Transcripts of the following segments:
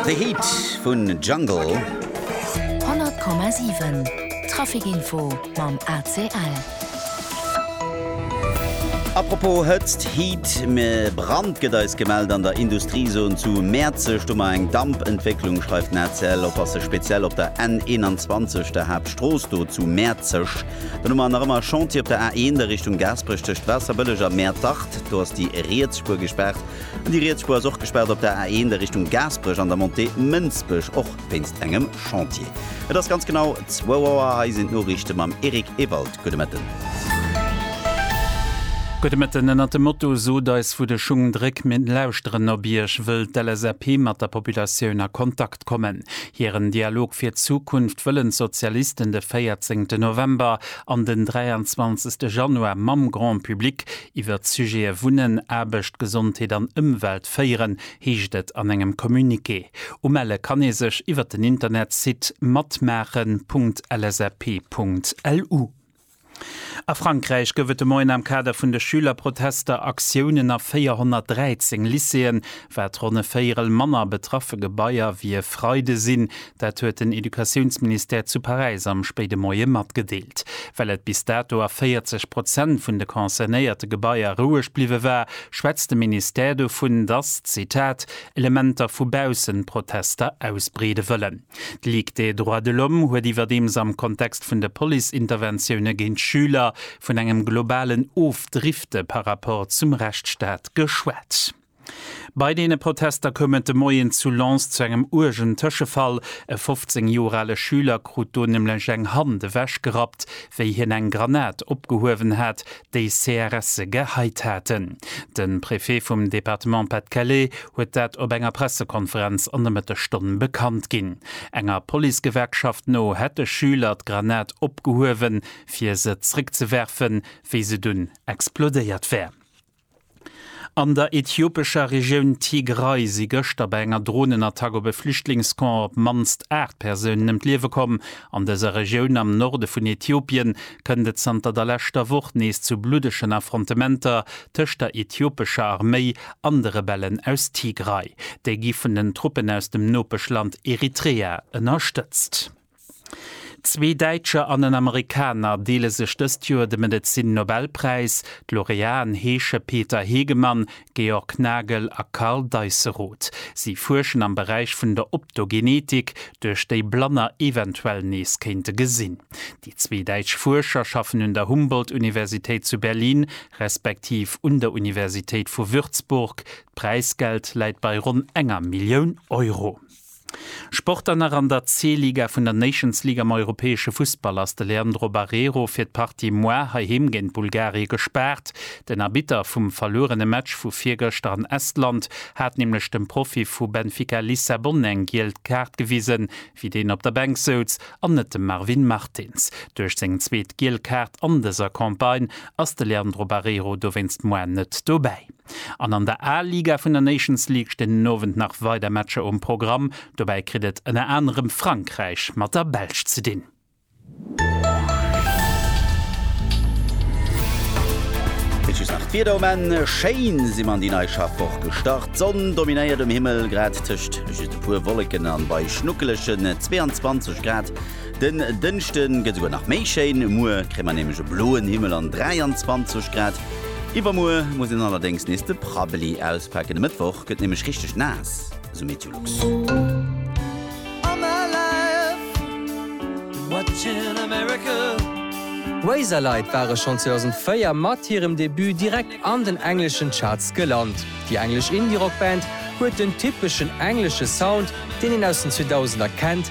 The Heat vun Jungle. 100,7 Traficinfo mam ACL. Apropos Hëtzt, Heat, mä Brand gëtt eis gemellt an der Industriezon zu Mäerzeg. Do mar eng Dampentwécklung, schreift den ACL. Oppasse speziell op der N21, der Haaptstrooss do zu Mäerzeg. Dann hu mer nach ëmmer Chantier op der A1, der Richtung Gaasperech tëscht Waasserbëlleg a Mäertert. Do ass déi riets Spuer gespaart. Déi riets Spuer ass och gespaart op der A1 a Richtung Gaasperech an der Montée Mënsbech, och wéinst engem Chantier. Et ass ganz genau 2 Auer, hei sinn d'Noriichte mam Eric Ewald. Gudde Mëtten. Gudde Mëtten. Ënnert dem Motto Sot eis wou de Schung dréck, mir lauschteren op Iech wëll d'LSAP mat der Populatioun a Kontakt kommen. Hiren Dialog fir d'Zukunft wëllen d'Sozialisten de 14 November an den 23 Januar mam Grand Public Iwwert d'Sujete Wunnen, Aarbecht, Gesondheet an Ëmwelt féieren, heescht et an engem Communiqué. Umelle kann ee sech iwwert den Internetsite matmaachen.lsap.lu. A Frankräich gouf et de Moien am Kader vun de Schülerprotester Aktiounen a 413 Lycéeën. Wat ronn e Véierel manner betraffe Gebaier wéi e Freide sinn Dat huet den Educatiounsministère zu Paräis am spéide Moie matgedeelt. Well et bis dato a 40 Prozent vun de concernéierte Gebaier roueg bliwwe war, schwätzt de Ministère dovun, datt, Zitat, Elementer vu baussen d'Protester ausbreede wëllen. D'Ligue des droits de l'homme huet iwwerdeems am Kontext vun de Police-Interventioune géint Schüler vun engem globalen Ofdrifte par rapport zum Rechtsstaat geschwat. Bei deene Protester koum et de Moien zu Lens zu engem uergen Tëschefall. E 15 Joer ale Schüler krut do nämlech eng Hand ewechgerappt, wéi hien eng Granat opgehuewen hat, déi CRSe geheit haten. De Préfet vum Departement Pas-de-Calais huet dat op enger Pressekonferenz an de Mëttesstonne bekannt ginn. Enger Policegewerkschaft no hätt de Schüler d'Granat opgehuewen, fir se zréckzewerfen, wéi se dunn explodéiert wär. An der ethiopescher Regioun Tigray si gëschter bei enger Dronenattack op e Flüchtlingscamp op d'mannst 8 Persounen ëm d'Liewe komm. An dëser Regioun am Norde vun Ethiopien kënnt et zanter der leschter Woch nees zu bluddegen Affrontementer tëscht der ethiopescher Arméi an de Rebellen aus Tigray. Déi gi vun den Truppen aus dem Nopeschland Eritrea ënnerstëtzt. Zwee Däitscher an en Amerikaner deele sech dëst Joer de Medezin-Nobelpräis. D'Laureaten heesche Peter Hegemann, Georg Nagel a Karl Deisseroth. Si fuerschen am Beräich vun der Optogenetik, duerch déi Blanner eventuell nees kéinte gesinn. Déi zwee däitsch Fuerscher schaffen un der Humboldt-Universitéit zu Berlin respektiv un der Universitéit vu Würzburg. D'Präisgeld läit bei ronn enger Millioun Euro. Sport an nach an der C-Liga vun der Nations League am europäesche Fussball ass de Leandro Barreiro fir d'Partie muar heiheem géint Bulgarie gespaart. Den Arbitter vum verluerene Match vu virgëschter an Estland hat nämlech dem Profi vu Benfica Lissabon eng giel Kaart gewisen, wéi deen op der Bänk souz, an net dem Marvin Martins. Duerch seng zweet giel Kaart an dëser Campagne ass de Leandro Barreiro dowéinst muar net dobäi. An an der A-Liga vun der Nations League stinn den Owend nach weider Matcher um Programm. Dobäi kritt et ënner anerem Frankräich mat der Belsch ze dinn. Bis just nach d'Wieder um Enn, Schéin si mer an déi nei Schaffwoch gestart. D'Sonn dominéiert um Himmel, grad tëscht just e puer Wolleken an bei schnuckelegen 22 Grad. Den Dënschde gëtt esouguer nach méi schéin, muer kréie mer nämlech e bloen Himmel an 23 Grad. Iwwermuer muss een allerdéngs nees de Prabbeli auspaken, de Mëttwoch gëtt nämlech richteg naass, esou Meteolux. Razorlight ware schonn 2004 mat hirem Debut direkt an den engleschen Charts gelant. Déi englesch Indie-Rock-Band huet den typeschen englesche Sound, deen een aus den 2000er kennt,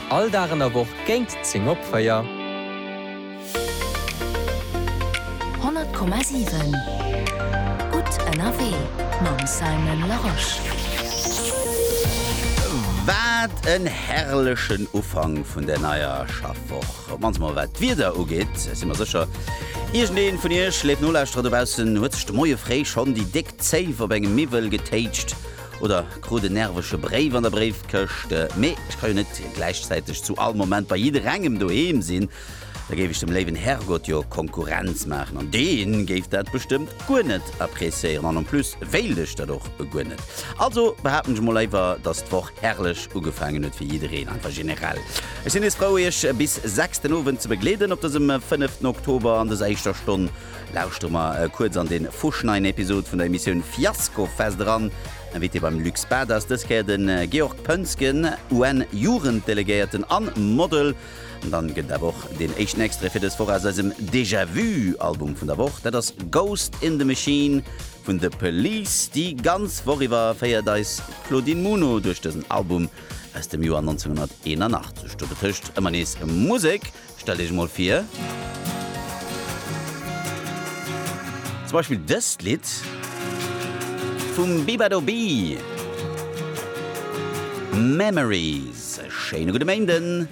All Dag an der Woch géint 10 op 4. 100,7 Gutt ënnerwee mam Simon Larosche. Wat en herrlechen Ufank vun der neier Schaffwoch. Wann se mol wat d'Wieder ugeet, si mer sécher, iergendee vun iech, léif Nolauschterer dobaussen, huet sech de Moie fréi schonn déi déck Zéif op engem Miwwel getéitscht. Oder krut en nervege Bréif an der Bréifkëscht. Mee ech ka jo net gläichzäiteg zu all Moment bei jidderengem doheem sinn. Da géif ech dem léiwen Herrgott jo Konkurrenz maachen an dee géif dat bestëmmt guer net appreciéieren. An en plus wéilt ech dat och guer net. Also behaapten ech emol éiwer, dass d'Woch herrlech ugefaangen huet fir jiddereen. Einfach generell. Ech sinn nees frou Iech bis 6 den Owend ze begleeden op dësem 5 Oktober an dëser éischter Stonn. Lauschtere mer kuerz an den fusch neien Episode vun der Emissioun Fiasko Fest eran. Invité beim Luc Bad ass dës Kéier den Georg Pönsgen, UN Jugenddelegéierten an Model. An dann gëtt et awer och den éischten Extrait fir dës Woch aus eisem Déjà Vu Album vun der Woch. Dat ass Ghost in the Machine vun The Police. Déi ganz Woch iwwer féiert eis Claudine Muno duerch dësen Album aus dem Joer 1981. Do betëscht ëmmer nees Musek. Stellt Iech emol vir, zum Beispill dëst Lidd vum Bibadobee, Memories. E schéine gudde Méinden.